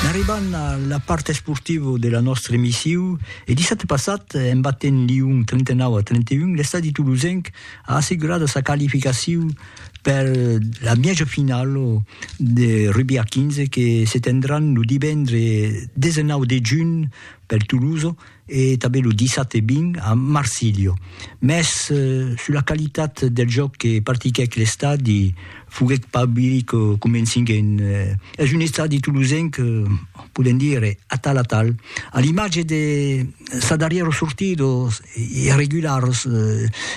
N'arribam a la part esportiva de la nòstra emissiu e dissabte passat, en batent Lyon 39 a 31, l'estadi tolosenc a assegurada sa qualificaciu per la mièja finala de rugbi a 15 que se tendràn lo divendre 19 de junh per Tolosa e tanben lo 17 e 20 a Marsilio, mès sus la qualitat del jòc que practiquèc l'estadi foguèt pas biri que comenciguèn. Es un estadi tolosenc, podèm dire, atal atal, a l'imatge de sa darrièra sortida, los irregulars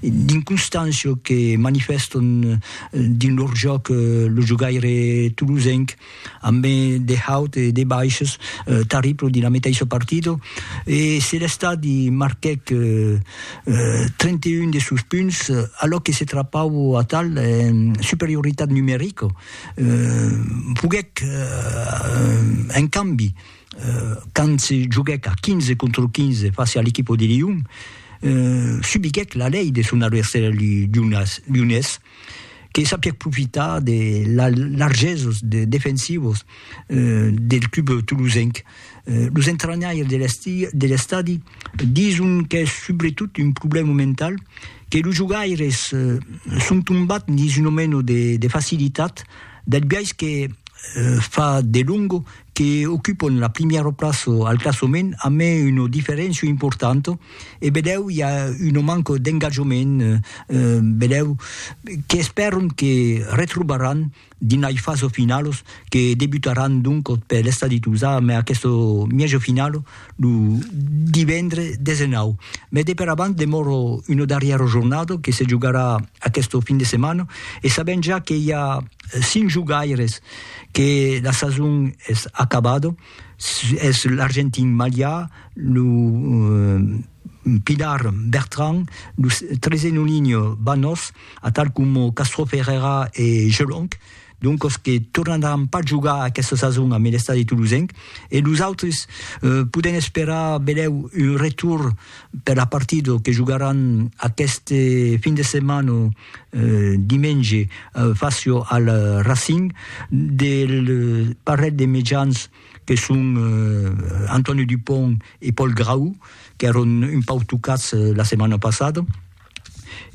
d'inconstància que manifèstan dins lor jòc lo jogaire tolosenc. amb de haut e de baishs tarriplo dins la meteissa partida e se l'estadi marquèc 31 de sos punts alò que se trapau atal en superioritat numerica foguèc en cambi quand se joguèc a 15 contra 15 fàcia a l'equipa de Lion subiguèc la lei de son adversari lionés. que sapièc profitar de las largeses defensivas del club tolosenc. Los entranhaires de l'estadi dison qu'es subretot un problèma mental, que los jogaires son tombats dins una mena de facilitat del biais que fa delonga que ocupan la primièra plaça al classament amé una diferéncia importanta e vedèu i a una manca d'engajament, vedèu que espèron que retrobaràn dins lei fasa finalos que debutaràn doncas per l'estadi Tuzà mai aquesta mièja finala lo divendre 19. Mai de per avant demòra una darrièra jornada que se jogarà aquesta fin de setmana e sabèm ja que i a cinc jogaires que la sason es acabada, Es l'argentin Malià, lo Pilar Bertran, lo trese Nulinho Banos, atal coma Castro Ferreira e Gelonc, doncos que tornaràn pas jogar aquesta sason a Melestadi Tolosenc, e los autres podèn esperar belèu un retorn Per la partida que jogaràn aqueste fin de setmana dimenge fàcia al Racing del parelh de mejans que son Antonio Dupont e Paul Grau qu'èron un pauc tocats la setmana passada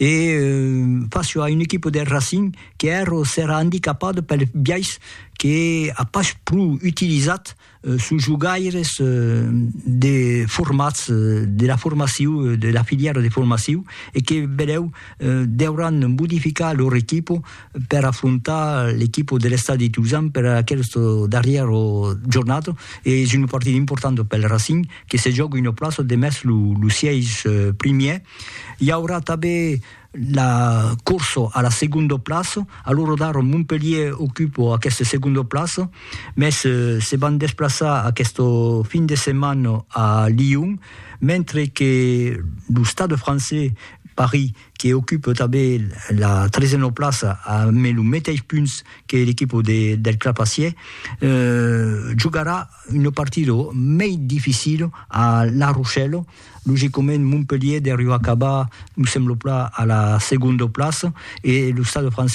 e fàcia a una equipa del Racing qu'èra serà andicapada pels biais que a pas pro utilizat Sos jogaires de formats de la formaciu de la filièra de formaciu e que benlèu deuràn modificar lor equipo per afrontar l'equipo de l'Estadi de Tuzan per aquesta darrièra jornada e es una partida importanta pel Racing que se jòga una plaça demest lo sièis primièr. I aurà tanben la corso a la segondo plaço, a lo rodar Montpellier ocupo aqueste segondo plaço, mès se van desplaçar aqueste fin de setmana a Lyon, mentre que lo Stade francés Paris que ocupe tanben la tresena plaça ambe lo meteis punts que l'equipo del Clapacier, jogarà una partida mei dificila a La Rochelle. Logicament, Montpellier deriu acabar, me semblo plan, a la segonda plaça e lo Stade français,